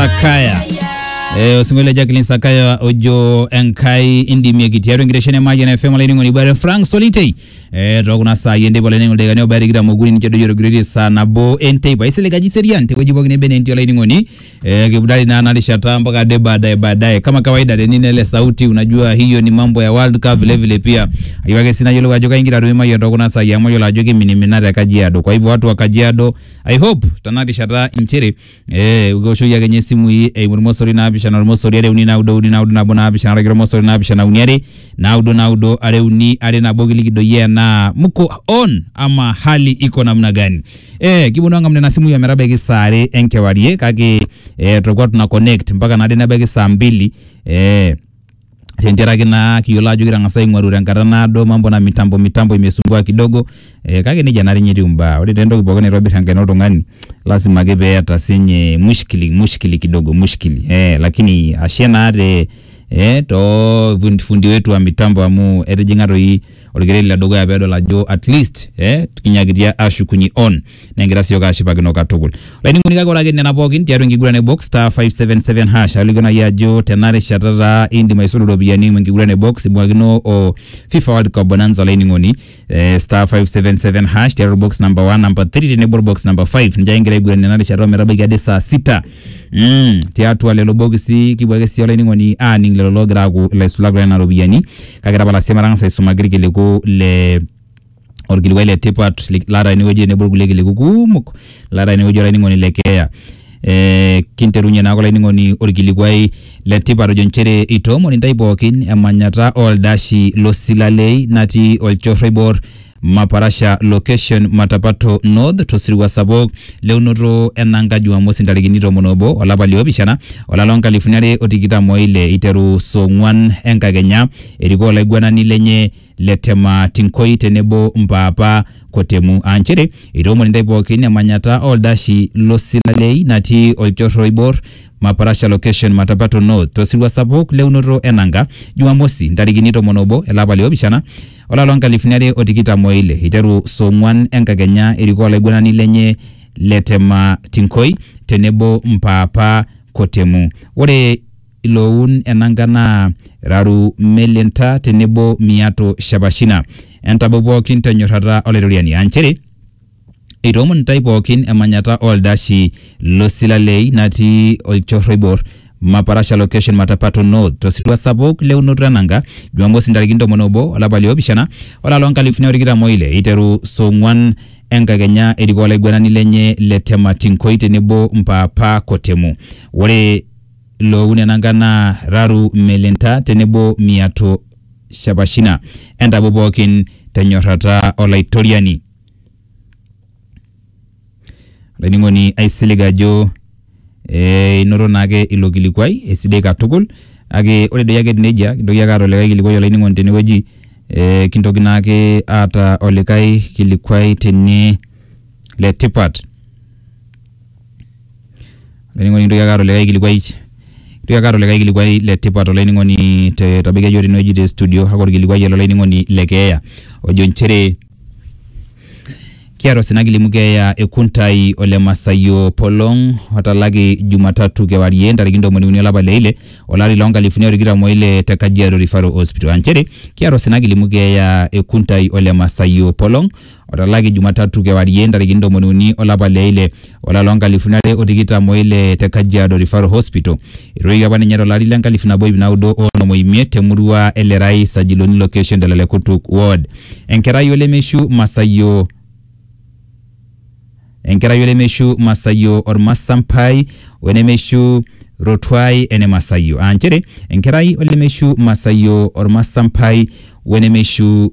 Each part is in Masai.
Sakaya. Eh, osingo le Jacqueline Sakaya ojo enkai indimieki tiatua enkitesheni e Mayian FM olainining'oni ibare Frank Solitei eh, tookuna saai enteipa olainining'oni ildakikani obaya tikitam okuni ninche doyio orgiriri saa nabo enteipa aisilig aji serian tewueji pookin nebe netii olainining'oni eh, kibudari naa ena rishata mpaka ade baadaye baadaye kama kawaida teni nele sauti unajua hiyo ni mambo ya World Cup vile vile pia ayieu ake sii nayiolou ajo kaingira atum Mayian tookuna saai amu ayiolo ajo kimininimina te Kajiado kwa hivyo watu wa Kajiado I hope tena rishata inchere Eh, kiwoshoki ake nye isimui eimu irmosori naapishana ormosori are uni naudo uni naudo nabo naapishana araki ormosori naapishana uni are naudo naudo are uni are nabo kiliki doi enaa mko on ama hali iko namna gani. Eh, kiponu ang'amu nena simui ometabaiki saa are enkewarie kake eh, tolkuak tuna connect mpaka naade nebaiki saa mbili eh, tenteraki naa kiyiolo ajo kitang'asa aing'oru tenkata naado mambo na mitambo mitambo imesumbua kidogo eh, kake nejia naa ninye etiu imbaa ore taa entoki pookin naitobirr enkaina oltung'ani lasima ake peeta sinye mushkili mushkili kidogo mushkili eh, lakini ashe naa te eh, too fundi, fundi wetu wa mitambo amu etijing'a toi orkereri ledukuya pedol ajo atleast eh, kinyakitia ashukunye on negira siok ashipakino katukul olainining'oni kake ore ake nena pookin tiatua enkiguran e box star 577 hash alikio nai ajo tena rishata taa indim aisulu iropiyiani eimu enkiguran e box ibung'akino o fifa world cup bonanza olainining'oni eh, star 577 hash tiatua box number 1 number 3 tenebo box number 5 ninche ake ingira aiguran ena rishata ometabaiki ade saa sita mm, tiatua lelo bokisi kipuo ake sii olainining'oni aaning lelo loogira aaku ilaisulak loo nena ropiyiani kake tapala sii matang'asa aisumaki irkiliku le orkilikuai le tipat li- laata enewueji tenebo irkulie kiliku kumok laata enewueji olainining'oni le keeya eh, kinterunye naake olainining'oni orkilikuai le tipat ojo nchere itoomoni intae pookin emanyata oldashi losilalei natii olchorro oibor Maparasha location Matapato North tosirua sapuk leunoto enanka Jumamosi ntarikini tomon obo olapa liopishana olapa loonkalifuni are otikitam oile iteru saa ong'wan enkakenya erikoo olaiguanani lenye le Tema Tinkoi tenebo Mpaapa Kotemu aa nchere eitoomon intae pookin emanyata oldashi lo Silalei natii olchorro oibor Maparasha Location Matapato North tosirua sapuk le unoto e nanga Jumamosi ntarikini tomon obo ele apa liopishana olapa loo nkalifuni are o tikitam o ile eiteru saa ong'uan enkakenya erikoo olaiguanani lenye le Tema Tinkoi tenebo Mpaapa Kotemu. Ore iloun enanga naa Raru Melinta tenebo Miato Shapashina. Entabau pookin tenyorrata Olaitoriani aa nchere eitoomon intae pookin emanyata oo ldashi lo Silalei natii olchorro oibor Maparasha Location Matapato North to sirua sapuk le unoto enanga Jumamosi ntarikini tomon obo olapa li opishana olari loo nkalifuni are o tikitam o ile eiteru saa ong'uan enkakenya erikoo olaiguanani lenye le Tematinkoy tenebo Mpaapa Kotemu. Ore loo nena ngan naa Raru, Melinta tenebo Miato Shapashina. Entapu pooki te nyorrata Olaitoriani. Olainining'oni aisilig ajo ee inoto naake ilo kilikuai esidai katukul kake ore doi ake etiu neijia kintoki ake aata olikae kilikuai olainining'oni tenewueji ee kintoki naake aata olikae kilikuai tene le tipat. Olainining'oni kintoki ake aata likae kilikuai, kintoki ake aata likae kilikuai le tipat olainining'oni te etabakia yook tenewueji te studio kake olkilikuai ale olainining'oni le keeya ojo inchere kieta osina kilimu keeya e Kuntai ole Masaio Opolong otalaki Jumatatu kewarie ntarikini ntomoni uni elapa le ile olari loo nkalifuni are o tikitam o ile te Kajiado Referral Hospital aa inchere kieta osina kilimu keeya e Kuntai ole Masaio Opolong. otalaki Jumatatu kewarie ntarikini ntomoni uni olapa le ile olari loo nkalifuni are o tikitam o ile te Kajiado Referral Hospital. Etuudoki apa ninye to lari le nkalifu nabo iip naudo o onom o imiet te murua e Lerai Sajiloni location Dalale Kutuk ward. Enkerai olemeishu Masaio enkerai olemeishu Masaio Ormasampai we nemeishu Rotuai ene Masaio aa nchere enkerai olemeishu Masaio Ormasampai we nemeishu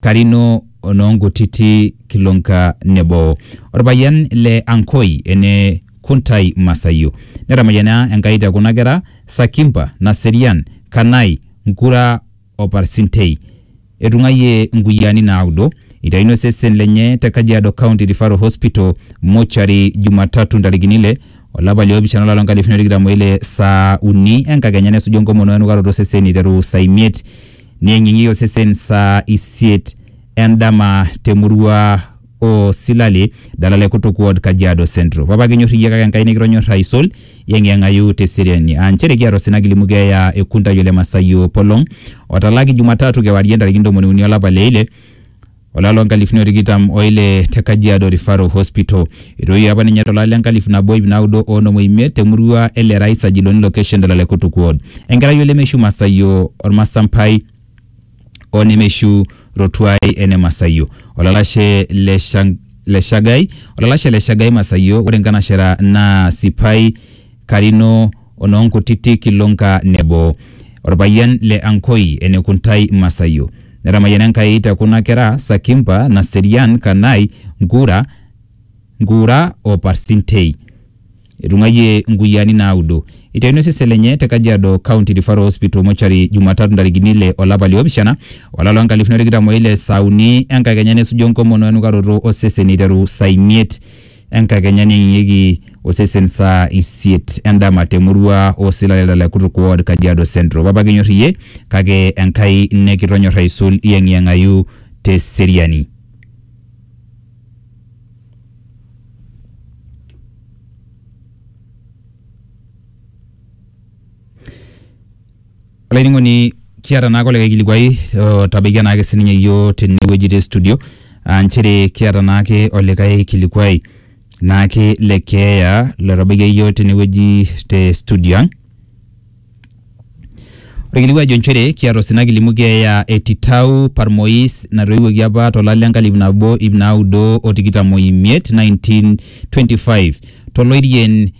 Karino o noo Nkutiti Kilonka nebo olpayian le Ankoi ene Kuntai Masaio. Netamayiana Enkai te kuna kera, Sakimpa, Naserian, Kanai, Nkura o Parsintei. Etung'ayie nkuyiaani naudo. Eitayuno osesen lenye te Kajiado County Referral Hospital mortuary Jumatatu ntarikini ile o lapa li opishana olari loo nkalifuni are o tikitam o ile saa uni enkakenya nesuju enkomono o enukaroto o sesen eiteru saa imiet Neyeng'iyeng'ie osesen saa isiet endama te murua o Silale, Dalale Kutuk Ward, Kajiado Central. Papa kinyor iyie kake Enkai nikitonyorra aisul, yeng'iyeng'ayu te seriani. Aa nchere kiata osina kilimu keeya e Kuntai Ole Masayio Polong otalaki Jumatatu kewarie ntarikini ntomoni uni olapa le ile olapa loo nkalifuni o tikitam o ile te Kajiado Referral Hospital. Etoiwuo apa ninye tolari le nkalifu nabo ip naudo o onom o imiet te murua e Lerai Sajiloni location te Lalekutuk ward. Enkerai o Lemeshu Masaio Ormasampai o Nemeshu Rotuai ene Masaio. Olalashe le Shang- le Shagai, olalashe le Shagai Masaio, ore nkanashera naa Sipai Karino onoonkutitik ilonka nebo. Olpayian le Ankoi, ene Kuntai Masaio. Netamayiana Enkai te kuna kera, Sakimpa, Naserian, Kanai, Nkura, Nkuura o Parsintei. Etung'ayie nkuyiaani naaudo. Eitayuni osesen lenye te Kajiado County Referral Hospital Mortuary Jumatatu ntarikini ile o lapa liopishana o lapa loo nkalifuni o tikitam o ile saa uni enkakenya nesuju enkomono o enukaroto o sesen eiteru saa imiet enkakenya neyeng'ieki osesen saa isiet endama temurua osilaleta le Kutuk Ward, Kajiado Central. Papa kinyor iyie kake Enkai nikitonyor aisul iyeng'iyeng'ayu te seriani. olainining'oni kiata naake olikae kilikuai otabaikia naake sininye yioo tenewueji te studio aa nchere kiata naake olikae kilikuai naake le keeya lotabaikia yioo tenewueji te studio ang'. Ore kilikuai ejo nchere kiata osina kilimu keeya e Titau Parmoiz natoiwuoki apa to lari le nkalifu nabo iip naudo o tikitam o imiet, 1925 to Loirien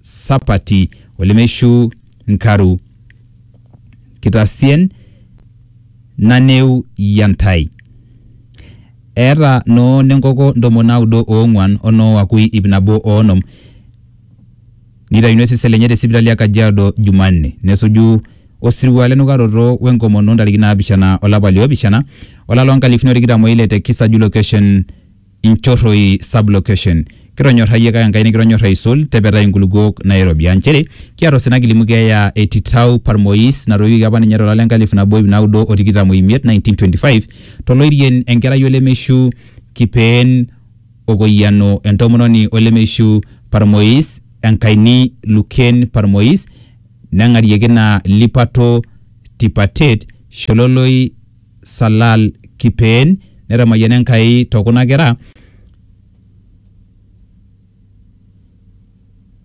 sapati olemeishu nkaru. Kitasien naneu ya ntai. Eeta noo nenkoko ntomon naudo oong'uan o noo wakui ip nabo o onom. Neitayuni osesen lenye te sipitali e Kajiado Jumanne. Nesuju osirua lenukaroto we nkomono ntarikini naapishana olapa liopishana olari loo nkalifuni o tikitam o ile te Kisaju location. Inchorroi Sub-location. Kitonyorrayie kake Enkai nikitonyorra aisul, tepetai inkulukuok naairobi. Aa nchere, kiata osina kilimu keeya e Titau Parmois natoiwuoki apa ninye tolari le nkalifu nabo iip naudo o tikitam o imiet, 1925, to loirien enkerai o lemeishu Kipeen Okoyiano, entomononi o lemeishu Parmois, Enkaini Lukeen Parmois, neng'arieki ina lipato Tipatet, Shololoi, Salal Kipeen netamayiana Enkai to kuna kera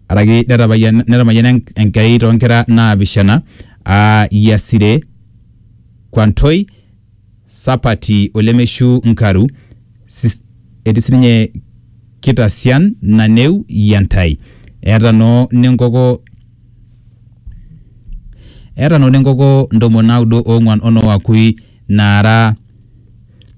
araki netapayiana netamayiana Enk- Enkai too nkera naapishana aa Yasire, Kwantoi, Sapati o Lemeshu Nkaru sis- etii sininye Kitasian, Naneu, Yantai. Eeta noo nenkoko Eeta Noa enkoko ntomoni naudo oong'uan o Noa Akui naara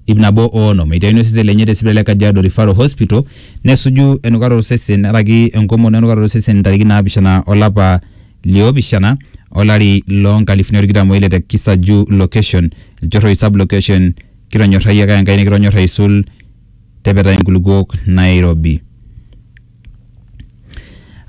iip nabo o onom. Eitayuni osesen lenye te sipitali e Kajiado Referral Hospital nesuju enukata o sesen nearaki enkomono enukata o sesen ntarikini naapishana o lapa li opishana o lari loo nkalifuni o tikitam o ile te Kisaju Location, Lchorroi Sub Location, Kitonyorrayie ake Enkai nikitonyorr aisul tepetai nkulukuok Nairobi.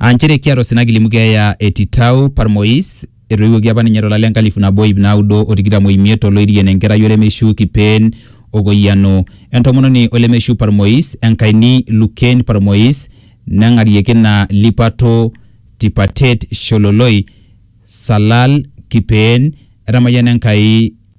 Aa nchere kiata osina kilimu keeya e Titau Parmois, etoiwuoki apa ninye tolari le nkalifu nabo iip naudo o tikitam o imiet oloirien enkerai olemeshiu Kipeen Okoyiano, entomononi olemeshiu Parmois, Enkaini Lukeen Parmois, neng'arieki ina lipato Tipatet Shololoi, Salal, Kipeen, etamayiana Enkai.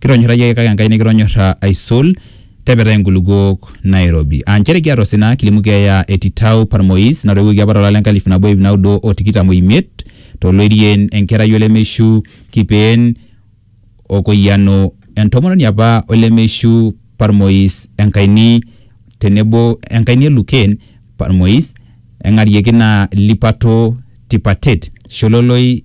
Kitonyorra iyioke kake Enkai nikitonyorra aisul, tepetai inkulukuok nairobi. Aa nchere kiata osina, kilimu keeya e Titau Parmois natoiwuoki apa tolari le nkalifu nabo iip naudo o tikitam o imiet, to Loirien, enkerai olemeishu, Kipeen o Koyiano, entomononi apa olemeishu, Parmois, Enkaini, tenebo Enkaini e Luken, Parmois, eng'arieki naa Lipato, Tipatet, Shololoi,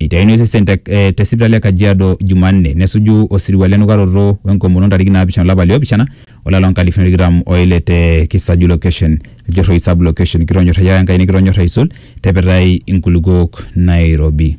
Eitaini osesen te, eh, te sipitali e Kajiado Jumanne nesuju osirua le nukaroto we nkomono ntariki naapishana olapa le opishana olari loo nkalifuni tikitam o ile te Kisaju location, Iljorhoi sub location. Kitonyorrayia Enkai nikitonyorr aisul te pitai inkulukuok Nairobi.